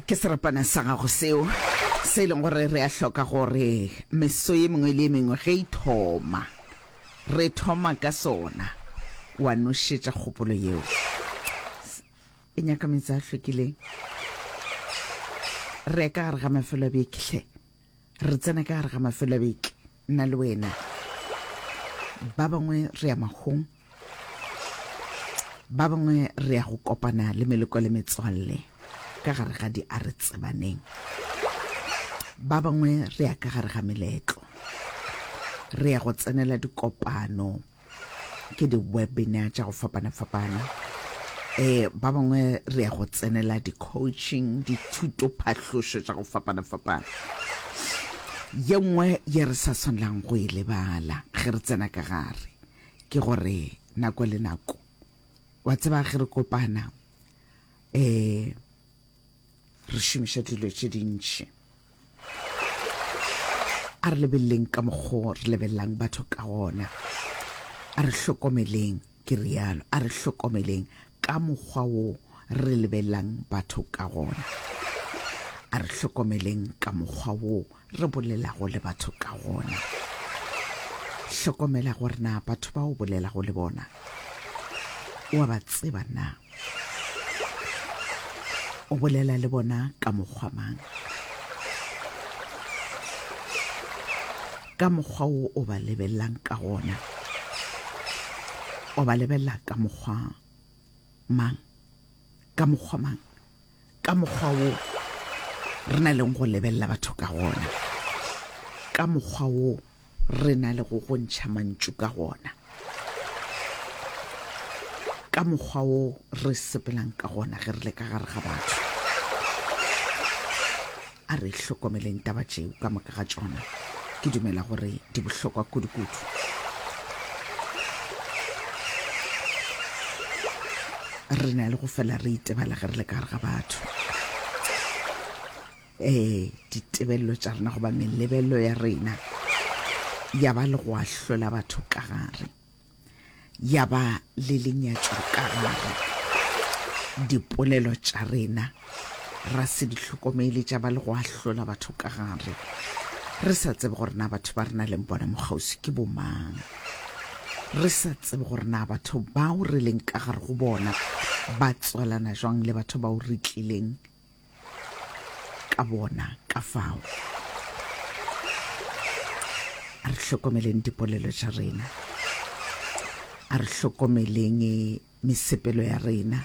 ke serapana sa gago seo se e leng gore re a hloka gore meso ye mengwe le ye mengwe ge e thoma re thoma ka sona wa nošetša kgopolo yeo e nyaka metsi a hlwekileng re ka gare ga mafelo a bekehle Re tsena ka gare ga mafelo a beke, nna le wena. Ba bangwe re ya magong, ba bangwe re ya go kopana le meleko le metswalle ka gare ga di a re tsebaneng. Ba bangwe re ya ka gare ga meletlo, re ya go tsenela dikopano. ke di-webinar tša go fapana-fapana um ba bangwe re ya go tsenela di-coaching dithutophahlošo tša go fapana-fapana ye nngwe ye re sa swanelang go e lebala ge re tsena ka gare ke gore nako le nako wa tseba ge re kopana um re šomiša dilo tše dintši a re lebeleleng ka mokgo re lebelelang batho ka gona a re hlokomeleng ke rialo a re hlokomeleng ka mokgwa wo re lebelelang batho ka gona a re hlokomeleng ka mokgwa wo re bolelago le batho ka gona. Hlokomela gore na batho ba o bolelago le bona o a ba tseba na. O bolela le bona ka mokgwa mang? Ka mokgwa o o ba lebelelang ka gona. O ba lebelela ka mokgwa mang? Ka mokgwa mang? ka mokgwa wo re na leng go lebelela batho ka gona ka mokgwa wo re na le go gontšha mantšu ka gona ka mokgwa wo re sepelang ka gona ge re le ka gare ga batho A re hlokomeleng taba tšeo ka moka ga tšona. Ke dumela gore di bohlokwa kudu-kudu. Re na le go fela re itebala ge re le ka gare ga batho. Ee, ditebelelo tša rena goba melebelelo ya rena ya ba le go ahlola batho ka gare. ya ba le lenyatšo ka gare. Dipolelo tša rena ra se di hlokomele tša ba le go ahlola batho ka gare, re sa tsebe gore na batho ba re na leng bona mokgauswi ke bomang, re sa tsebe gore na batho bao re leng ka gare go bona ba tswalana jwang le batho bao re tlileng ka bona ka fao a re hlokomeleng dipolelo tša rena a re hlokomeleng mesepelo ya rena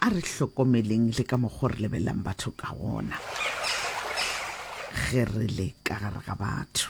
a re hlokomeleng le ka mokgwa re lebelelang batho ka gona ge re le ka gare ga batho